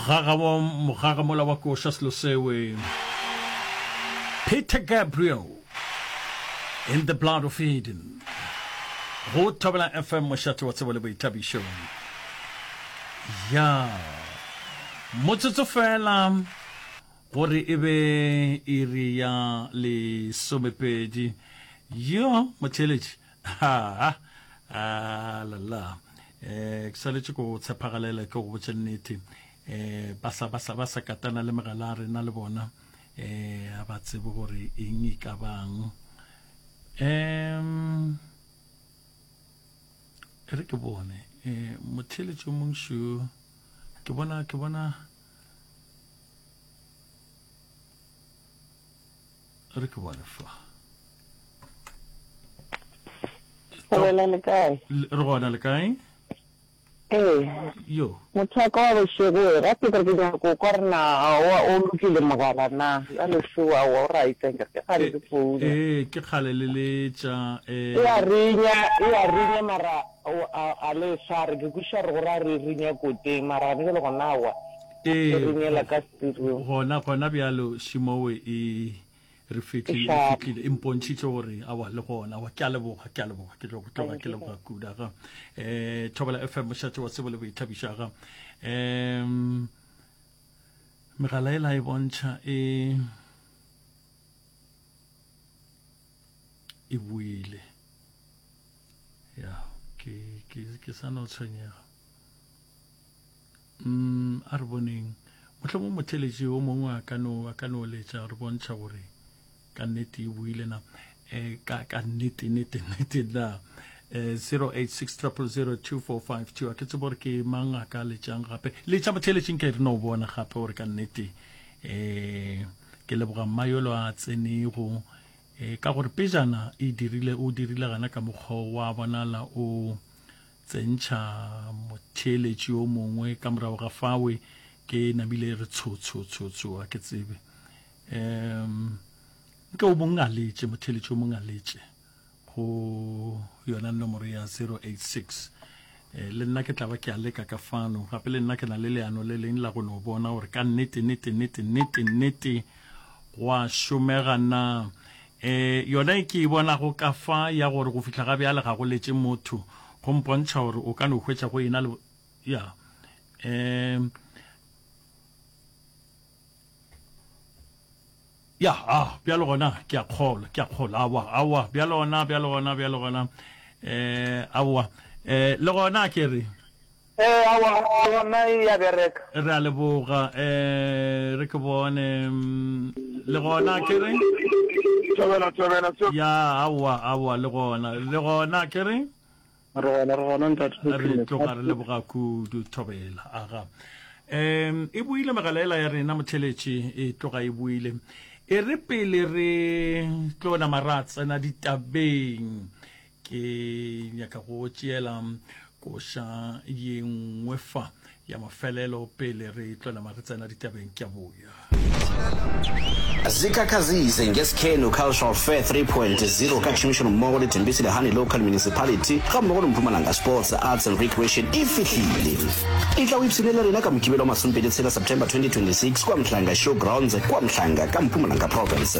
mogagamola mola wa koša selo sewe peter gabriel in the blood of eden go thobela fm mošate wa tsebo le boithabišo ya motsotso fela gore e be iri ya lesomepedi yo motheletši Haa, aa la la, eh, ke swanetše go tshepagalela ke go botše nnete. Eh, ba sa, ba sa, ba sa katana le megala ya rena le bona, eh, a ba tsebe gore eng e ka bang. Em, e re ke bone, eh, motheeletši o mong šo, ke bona, ke bona, re ke bone fa Bolela le kae? re gona le kae ee yo motho wa ka wa bošego we gape ke re ke nyaka ko kwa re na aowa o lokile mogala na ya lešogo aowa o right ke re ke kgale ke founa ee ke kgale le letša e ya rinya e ya rinya mara a le swa re ke kwiša re gore a re rinya koteng mara gone jalo gona aowa Ee, go, Irunyela ka Sepirong. gona, gona bjalo šimowe e re fihlile, e Ešala. fihlile, e mpontšhitše gore awa le gona, awa, ke a leboga, ke a leboga, ke tlo go tloga ke leboga kuda ga. Eh, Thobela FM, mošate wa tsebo le boithabiša ga. Em, megala e la e bontšha e e buile ya ke ke ke sa no tshwenyega Umm, a re boneng, mohlomong motheeletši yo mongwe a ka no, a ka no letša, re bontšha gore ka nnete e buile na, eh, ka, ka nnete, nnete, nnete na. Eh, 086 000 2452, a ke tsebo gore ke mang a ka letšang gape. Letša motheeletši nke re no bona gape gore ka nnete, eh, ke leboga mma yolo a tsenego, eh, ka gore pejana e dirile, o dirile gana ka mokgwa wa bonala o, Tsentšha motheeletši yo mongwe ka morago ga fawe. Ke namile e re tsho, tsho, tsho, tsho, a ke tsebe. Um, nke o mongwe a letše, motheeletši o mongwe a letše go yona nomoro ya 086. Eh, le nna ke tla ba ke a leka ka fano. Gape le nna ke na le leano le leng la go no bona gore ka nnete, nnete, nnete, nnete, nnete, go a šomega na. Ee, yona e ke e bonago ka fa ya gore go fihla ga bjale ga go letše motho go mpontšha gore o ka no hwetša go ena le ya um ya a bjalo gona ke a kgolwa ke a kgolwa awa awa bjalo gona bjalo gona bjalo gona um awa um le gona ke re Ee, aowa, aowa, yona e ya bereka. Re a leboga. Ee, re ke bone, le gona ke re? Thobela, Thobela, seo. Ya, aowa, aowa, le gona, le gona ke re? Re gona, re gona, Ntate Re Mokhinnetsa. tloga re leboga kudu, Thobela. Aga. Em, e buile megala ela ya rena, motheletši, e tloga e buile. E re pele re tlo nama ra tsena ditabeng, ke nyaka go tšeela koša ye nngwe fa ya mafelelo pele re tlwela mare tsena ditabeng ke a boya zikhakhazise ngesikhenu cultural fair 3.0 ka tšhomišano mmogo le tembisi le honey local municipality ga mmogo le mpumalanga sports arts and recreation e fihlile e tla o ipshine le rena ka mokibelo wa masompedi tshela september 2026 kwa mhlanga show grounds kwa mhlanga ka mpumalanga province